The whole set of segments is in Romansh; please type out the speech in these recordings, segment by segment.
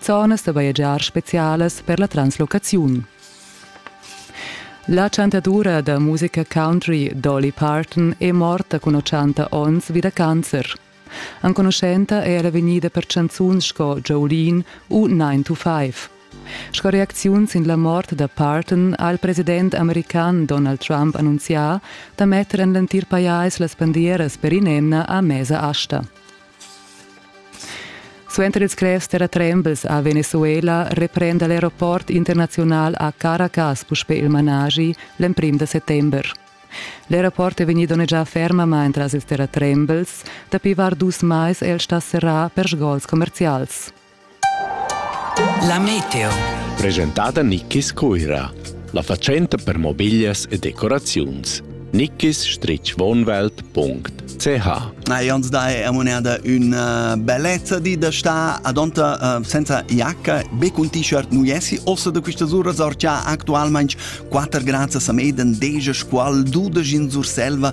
zonas da bajegiar spezialas per la translocaziun. La chantadura da musica country Dolly Parton è morta cun 80 onns vi da cancer. Enconuschenta è era vegnida per chanzuns sco Jolene u 9 to 5. Sco reacziun sin la mort da Parton ha il president american Donald Trump annunzià da metter en l'entir pajais las bandieras per in'emna a mesa asta. Suenter ils grevs terratrembels a Venezuela reprenda l'aeroport internaziunal a Caracas puspè il managi l'emprim da settember. L'aeroport è vegnì donnegià fermamain tras ils terratrembels. Dapi var dus mais è el stà serrà per sgols commerzials. La meteo. Presentada Nickis Cuira. La fatschenta per mobiglias e decoraziuns. nickis-wohnwelt.ch Na, Jans dai è moneda una bellezza di da sta adonta uh, senza iacca be cun t-shirt nu jessi ossa da quistas uras or cha actualmaing 4 grads a Sameden deja squal dudesch in Surselva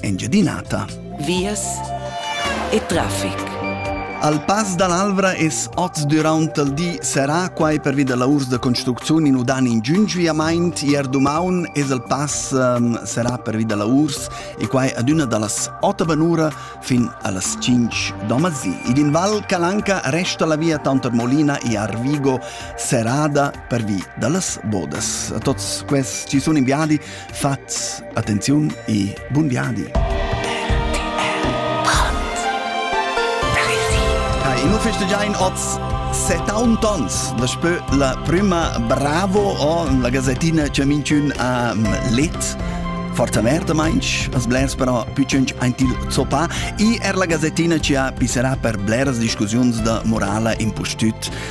Engiadinata. Vias e traffic. Al pass dall'Alvra es oz durant il di serà quai pervi da lavurs da construcziun in udan in giungiamaint. Ier dumaun es il pass um, serà pervi da lavurs e quai adüna dallas 8 banura fin allas 5 domazì. Id in Val Calanca resta la via tanter Molina e Arvigo serrada pervi da las bodas. A tots quests ci sun inviadi Fats attenziun e bun viadi! In uffis da giain oz 70 ons, da spö la prüma Bravo o la gazettina cha minchün ha let. Forza merda mainch, as blers però pitschens ein til zoppà e er la gazettina ci ha pisserà per bleras discussiuns da morala impustüt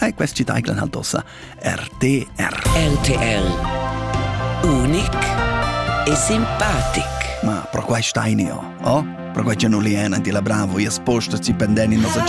Ei questi deiglan halt ossa RTR. RTL. Unic e simpatic. Ma pro quai stainio, oh? Pro quai che non li ena di la bravo, ias posta ci pendeni nosa giornata.